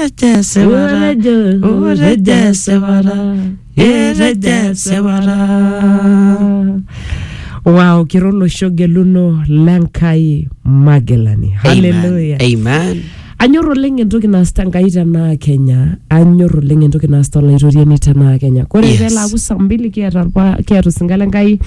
rejese bara o rejese bara e rejese bara wow kira olosho geluno lenkai magelani haleluya Amen. anyor oleng entoki naasita nkai tenaa kenya anyor oleng entoki naasita olaitoriani tenaa kenya kore Yes. yes. pelaaku saa mbili kiata orpa- kiata osinka lenkai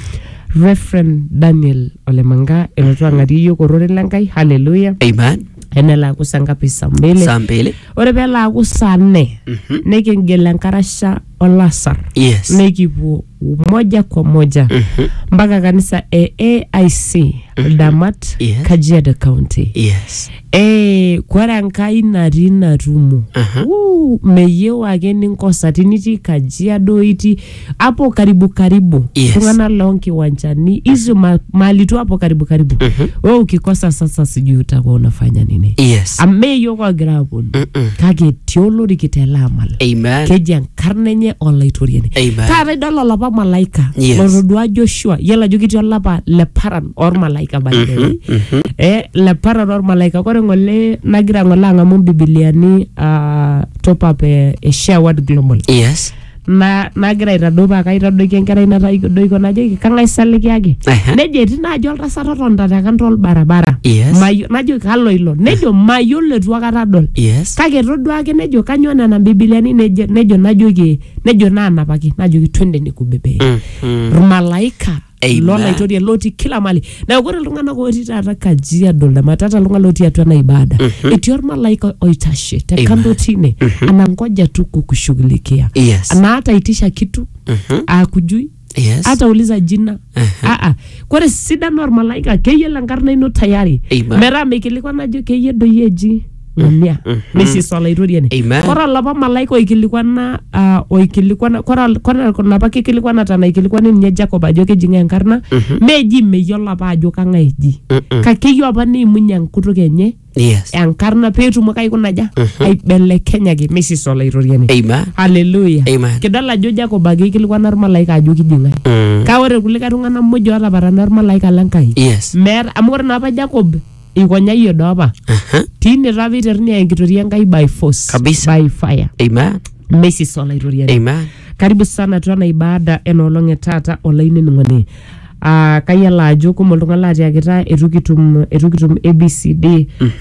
referent daniel olemanga elotu ang'arie yiok ororei lenkai haleluya Amen. enelaaku saa ngapi saa mbili saa mbili ore pelaaku saa nne Mhm. nikingil enkarasha olasar yes nikipuo moja kwa moja Mhm. mpaka kanisa e aic damat Yes. kajiado county yes Eh, kore enkai natii natumo Aha. Wuu, meyieu ake ninkosa tinitii kajiado itii hapo karibu karibu Yes. tungana lao nkiwanjani hizo ma, mali tu hapo karibu karibu Mhm. we ukikosa sasa sijui utakuwa unafanya nini Yes. ameyo kwagira aponu Mm-mm. kake etii olori kitela amal Amen. keji enkarna enye olaitoriani Amen. taata idol olapa malaika Yes. lotodua joshua yiolo ajo ketii olapa le paran ormalaika by the way Mhm. eh, le paran ormalaika kore ng'ole nagira ng'ole ang'amu mbibiliani uh, top up eh, eh, share word global Yes. na nagira aitadou paa kaitadoiki enkerai natadoikio najoki kang'ae sa likiyaki Ehe. nejo etii naaji oltasat otonta te kando olbarabara Yes. Mayo- najoki kalo ilo nejo mayiolo etu akata adol yes kake todua ake nejo kanyoo nena bibiliani nejo nejo najoki nejo naanapaki najoki twende nikubebe Mhm. irmalaika Amen. lolaitoriani lotii kila mali neeku ore iltung'anak otii taata kajiado lematata iltung'anak lotii atua ena ibada etii ormalaika oitashe te Amen. kando tine anangoja tu kukushughulikia Yes. anaata itisha kitu akujui Yes. hata uliza jina Aa, kore sidano ormalaika keyiolo enkarna ino tayari Amen. metaa mikilikuan ajo keyie doi eji Nenia. Nesis Olaitoriani. Amen. Kore olapa malaika oikilikwana ah, oikilikwana kore ol- kore kuna apa kikilikwanata naikilikwana ninye Jacob ajo keji ng'ae enkarna meji meyiolo apa ajo kang'ae eji Mm-mm. kake eyieu apa neimunye enkutuk enye Yes. enkarna peetumoki aikuna aja aibelekenyaki mesis Olaitoriani. Amen. Haleluya. Amen. Kidol ajo Jacob ake eikilikwana ormalaika ajo kiji ng'ae. Mm. Kake ore kulikae tung'anak muj ootapatana ormalaika le Nkai Yes. meeta amu ore naapa Jacob eikonyayie doopa Aha. tine taa peiteruni aya enkitoria enkai by force Kabisa. by fire Amen. mesis olaitoriani Amen. karibu sana atua ena ibada enoolong e taata olainining'oni Ah, kayiolo ajo kumok iltung'anak laatiakita etu kitum etu kitum abcd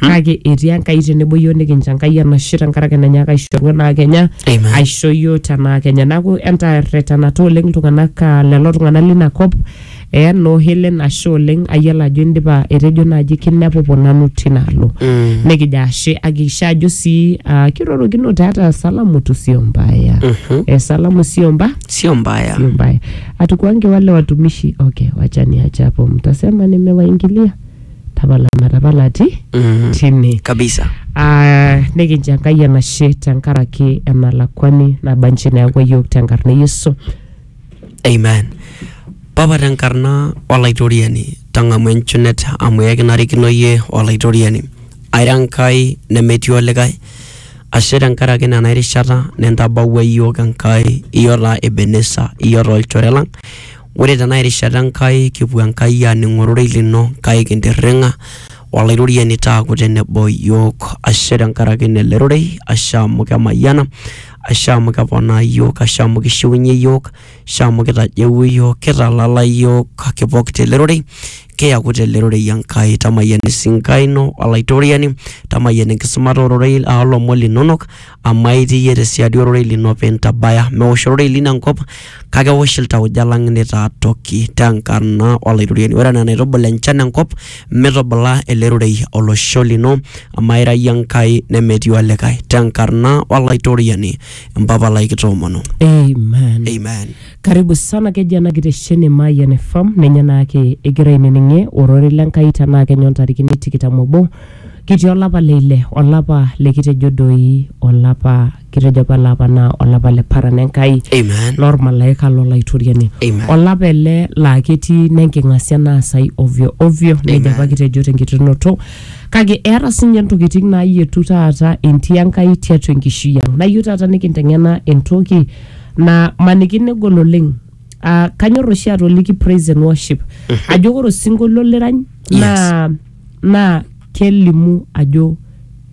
kake etii enkai tenebo yiok nikincho enkai enashe tenkaraki nenyaaka aishoru enaa kenya Amen. aisho yiok tenaa kenya neeku entarretanata oleng iltung'anak ah, lelo tung'anak lina kop Eya noo Helen ashe oleng ayiolo ajo indipa etejo naaji kinepupu nanu tinaalo Mm. nikijo ashe akikisha ajo sii ah, kirorokino taata salamu tu sio mbaya Mhm. eh, salamu sio mba sio mbaya sio mbaya hatukuange wale watumishi okay wacha niache hapo mtasema nimewaingilia tapala matapalati Mm. tine kabisa Ah, nikincho enkai enashe tenkaraki enalakwani nabanji neeku yiok tenkarna e yesu Amen. Papa tenkarna olaitoriani, tang'amu enchunet amu ekinarikino iyie olaitoriani. Aira Enkai nemetii olikae, ashe tenkaraki nena erishata nintabawua iyiook Enkai, iyio taa Ebenesa, iyio taa olchore lang. Ore tena erishata Enkai kipuo Enkai aaning ororei lino kake kintirring'a olaitoriani taaku tenebo iyiook. Ashe tenkaraki ilo rorei, ashe amu kemayiana ashe amu keponaa iyiook, ashe amu kishiunye iyiook, ashe amu kitajeu iyiook, kitalala iyiook, kipok tele rorei, kiyaku tele rorei Enkai. Tamayian esinkai ino Olaitoriani, tamayian enkisumata ororei ah, olomon linonok, amu aitii iyie tesiadi ororei lino pintabaya. Meosh ororei lino enkop, Kake ewosh iltauja lang neitaa toki te nkarna o Laitoriani. Ore anaa enaitubul enchan enkop, mitubula ele rorei olosho lino, amu aira iyie Enkai nemetii olikae, te nkarna o Laitoriani Mpapa lai kitoomonu. Amen. Amen. Karibu sana keji ena kitesheni Mayian FM ninye naake igira ainining'ie ororei le Nkai tenaa kenya ontarikini tikitam obo kitii olapa le ile olapa likitejo doi olapa kitejo apa ele apa naa olapa le paran enkai Amen. lormalaika lolaitoriani Amen. olapa ele laa ketii nenking'asia naasai ovyo ovyo nejo Amen. apa kitejo tenkiterunoto kake eeta sinye ntokitin naayietu taata entii enkai tiatua enkishui ang nayieu taata nikinteng'ena entoki na maniki negol oleng Ah, kanyor oshi atoliki praise and worship ajo ore osinkolio lirany naa naa kelimu ajo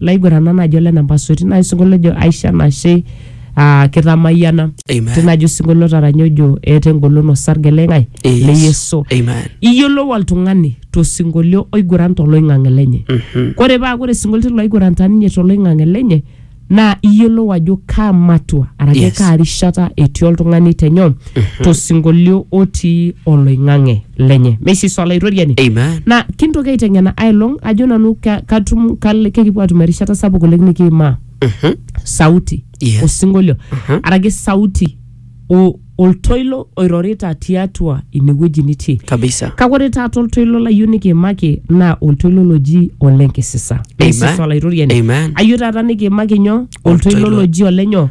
laiguranak naaji ole namba soti naa osinkolio ojo aisho enashe aa kitamayiana Amen. tinajo osinkolio taranya ojo eeta engolon osarge le ng'ae Yes. le yesu Amen. iyiolou oltung'ani tosinkolio oiguran toloing'ang'e lenye Mhm. kore paa kore sinkolio loiguranta ninye toloing'ang'e lenye naa iyiolou ajo kaa matua araki Yes. kaa rishata etii oltung'ani tenyo tosinkolio otii oloing'ang'e lenye meisisu olaitoriani Amen. na kintoki aiteng'ena ailong ajo nanu ka- katum kal- kekipuo atum erishata sapuk oleng nikiimaa Mhm. sauti Yes. osinkolio araki sauti o- oltoilo oirorita tiatua inewueji nitii Kabisa. kake ore taata oltoilo layieu nikiimaki naa oltoilo loji olenkisisa Amen. Meisisa olaitoriani Amen. ayieu taata nikiimaki nyoo oltoilo Oltoilo. loji olenyo